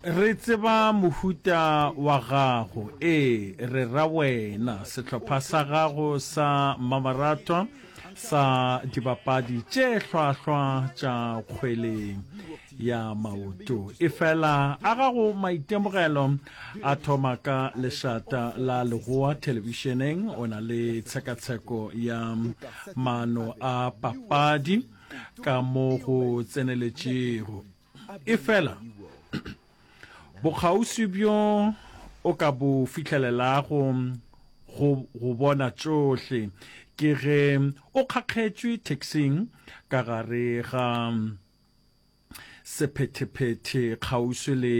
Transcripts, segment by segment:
Re tseba mohuta wa gago, ee, re ra wena, sehlopha sa gago sa mmamoratwa sa dibapadi tše hlwahlwa tša kgweleng ya maoto. Efela a gago maitemogelo a thoma ka lešata la legoa thelebišeneng, o na le tshekatsheko ya maano a papadi ka mo go tseneletšego. Efela, bokgauswi bjo o ka bo fihlelelago go go bona tšohle ke ge o kgakgetšwe taxing ka gare ga sephethephete kgauswi le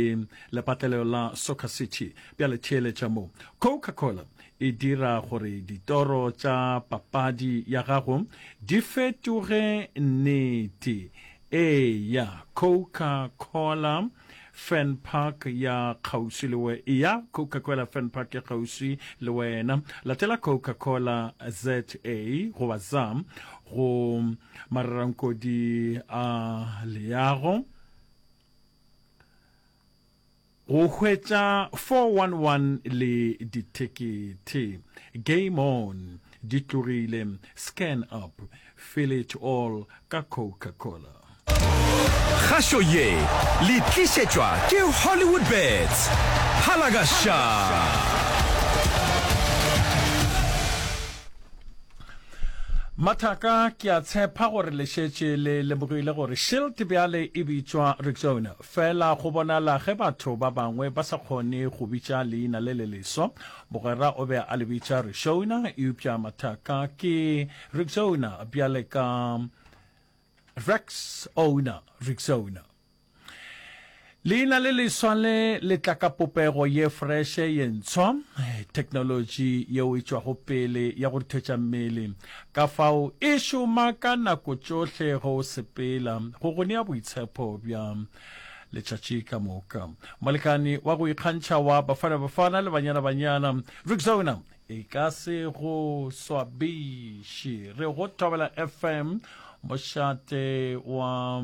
lepatlelelo la Soccer City. Bjale theeletša mo. Coca-Cola e dira gore ditoro tša papadi ya gago di fetoge nnete Eya, Coca Cola Fern Park ya kgauswi le we. Eya, Coca Cola Fern Park ya kgauswi le wena. Latela Coca Cola ZA goba ZA go marerankodi a leago. Go hwetša 411 le dithekethe. Game on! Di tlogile. Scan up. Fill it all ka Coca-Cola. Kgašo ye le tlišetšwa ke Hollywoodbets. Phala ka ša! Mathaka, ke a tshepa gore le šetše le lemogile gore Shilt bjale e bitšwa Rexona. Fela go bonala ge batho ba bangwe ba sa kgone go bitša leina le le leswa. Mogwera o be a le bitša Rixouna, eupša mathaka ke Rixouna bjale ka Rexouna, Rixouna. Leina le leswa le le tla ka popego ye freshe, ye ntshwa, theknolotši yeo e tšwago pele ya go ruthetša mmele. kafao e šoma ka nako tšohle go sepela go go nea boitshepo bja letšatši ka moka. Molekane wa go ikgantšha wa Bafana Bafana le Banyana Banyana, Rixona e ka se go swabiše. Re go thobela FM, mošate wa